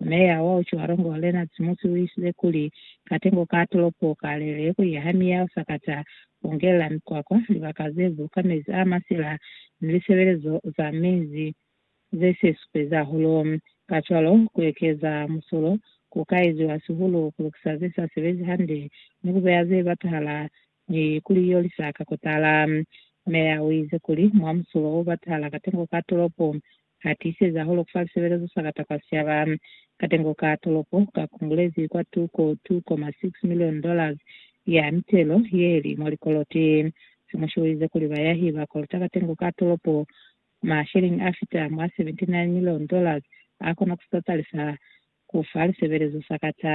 Meya wa Otjiwarongo Lena Tsimusi uisile kuli, katengo ka tolopo kalelele kuya ha miyao sakata, kungelela mikwakwa, libaka ze buluka mezi a masila, ni lisebelezo za mezi ze se supeza hulu. Kacwalo, ku ekeza musulo ku ka eziwa sihulu ku lukisa ze sa sebezi hande ni ku beya ze batahala Ni kuli yo lisa ka kutala. Meya u ize kuli, mwa musulo wo batala katengo ka tolopo, ha tiiseza holo kufa lisebelezo sa kata kwa siaba. Katengo ka tolopo ka kungulezi kwa tuko 2.6 milioni dollars ya mitelo ye li mwa likoloti. Simushi u ize kuli bayahi ba kolota katengo ka tolopo masheleñi a fita mwa 79 milioni dollars a kona ku si tatalisa kufa lisebelezo sa kata.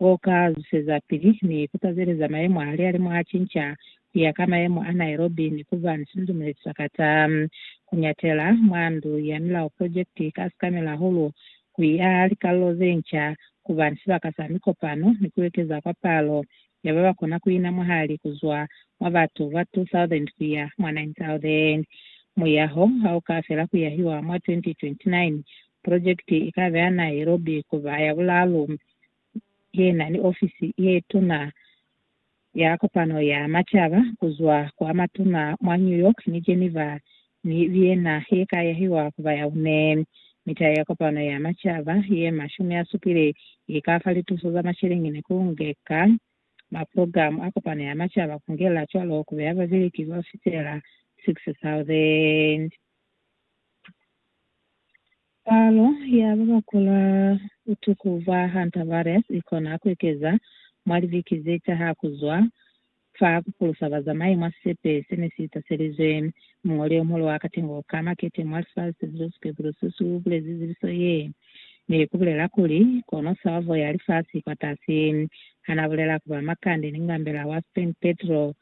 Wo ka zwisezapili ni kutazeleza mayemo hali a li mwa cinca kuya ka mayemo a Nairobi ni kuba ni sinzumulezi sa kata. Kuñatela mwa Ndu ya Milao Projekiti ka sikamela hahulu ku i aha likalolo ze nca, kuba ni sibaka sa mikopano ni kuekeza kwa palo ya baba kona kuina mwahali kuzwa mwa batu ba 2,000 kuya mwa 9,000. Muyaho ha u ka fela kuyahiwa mwa 2029, projekiti i ka beha Nairobi kuba ya bulaalu yena ni ofisi ye tuna ya kopano ya macaba kuzwa kwa matuna mwa New York ni Geneva ni Vienna ye ka yahiwa kuba ya une. Mita ya kopano ya macaba ye mashumi a supile i ka fa lituso za masheleñi ku ngeka maprogramu a kopano ya macaba ku ngela cwalo ku beya babeleki ba fitela 6,000. Palo ya ba ba kula butuku bwa hantavirus i kona ku ekeza mwa libiki ze taha ku zwa fa ku pulusa bazamai mwa sisepe se ne si taselizwe. Muñoli yo muhulu wa katengo ka makete mwa lifasi, Tedros Ghebreyesus, u bulezi zibiso ye ni ku bulela kuli, Kono salvo ya lifasi i kwatasi. Ha n'a bulela ku ba makande ni ngambela wa Spain Pedro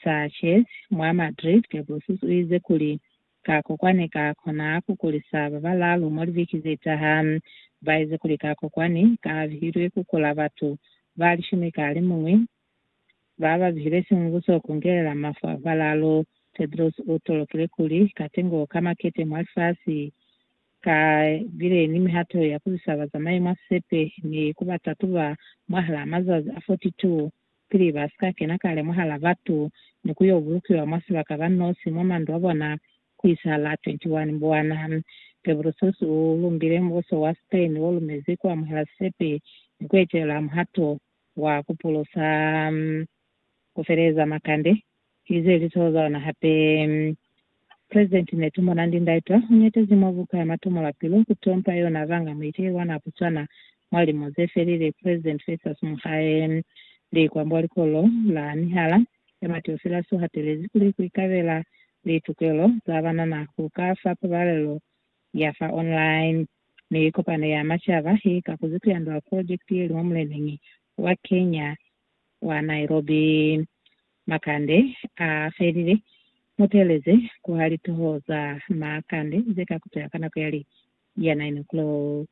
Sanchez mwa Madrid, Ghebreyesus u ize kuli, Ka ko kwani ka kona ku kulisa ba balaalu mwa libiki ze taha. Ba ezi kuli ka ko kwani ka bihilwe ku kula batu ba lishumi ka limuñwi ba ba bihilwe simubuso ku ngelela mafu a ba balaalu. Tedros u tolokile kuli katengo ka makete mwa lifasi ka bile ni mihato ya ku zisa bazamai mwa sisepe ni ku ba tatuba mwahalaa mazazi a 42. pili ba si ka kena kale mwahal'a batu ni ku y'o bulukiwa mwa sibaka ba nosi mwa mandu a bona ku isahala 21 Mbwana. Pebrusus u lumbile mubuso wa Spain wo lumezi ku amuhela sisepi ni ku etelela muhato wa ku pulusa ku feleleza makande. Ki ze lizoho za ona hape. President Netumbo Nandi Ndaitwah u nyatezi mwa buka ya matomo la pilu ku tompa yona banga muiteli wa na Botswana mwa limo ze felile President Festus Mogae. Likwa mwa likolo la mihala ya Mateofilas u hatelezi kuli ku ikabela litokelo za banana ku ka fa pabalelo ya fa online, mi Kopano ya Macaba i kakuzi ku yandula project ye li mwa muleneñi wa Kenya wa Nairobi. Makande a felile. Mu teeleze ku ha litoho za makande ze ka kuteha ka nako ya li ya 9 o'clock.